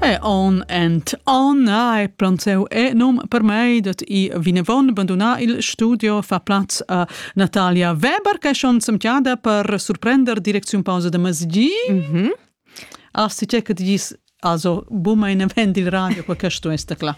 E on and on ai planzeu enum per mei dat i vinevon banduna il studio fa plaz a Natalia Weber che schon semtiada per surprender direcziun pausa da masgi. Mhm. Mm Asti che che dis also buma in vend il radio qua questo esta cla.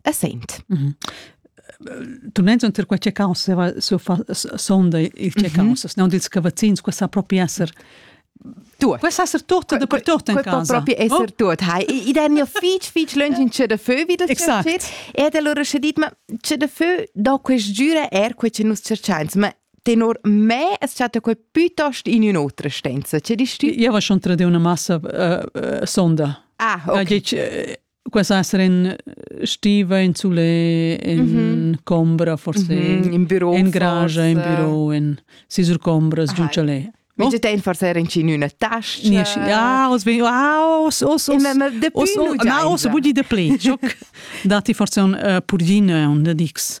è saint. Mm -hmm. Tumnenz unter quei checaus sonda il checaus, mm -hmm. non dils cavazzins, questa sa proprio esser Tut. Questo essere tutto da per tutto in casa. Può proprio essere oh. tutto. I danno fitch, fitch lunch in c'è da feu, wie das Exakt. E da allora ci dit, ma c'è da feu, da quest giura er quel che noi cerchiamo, ma tenor me es chatta quel piuttosto in un'altra stanza, c'è di sti? Io ho schon tra di una massa uh, sonda. Ah, ok. Questa essere in stiva in sole in mm -hmm. combra forse mm -hmm. in büro in garage in büro in si sur combras giuncale No? Mit den forse in in una tasca. Nisch. Ja, os vi wow, os os os. Na, os budi de pli. Dati forse un uh, purgine und dix.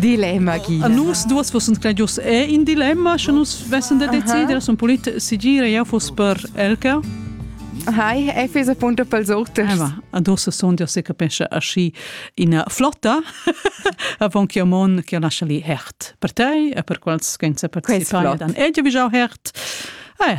Dilemma, Gina. A nus duas fossan credius è in dilemma, sche nus vessen da decider, son pulit sigire jau foss per Elka. Hi, e fes appunto pels auters. Eva, adossa son dir se capescha aschi ina flotta avon che mon che lascia li hert per te e per quels che in se participai dan. E jau jau hert. Eh,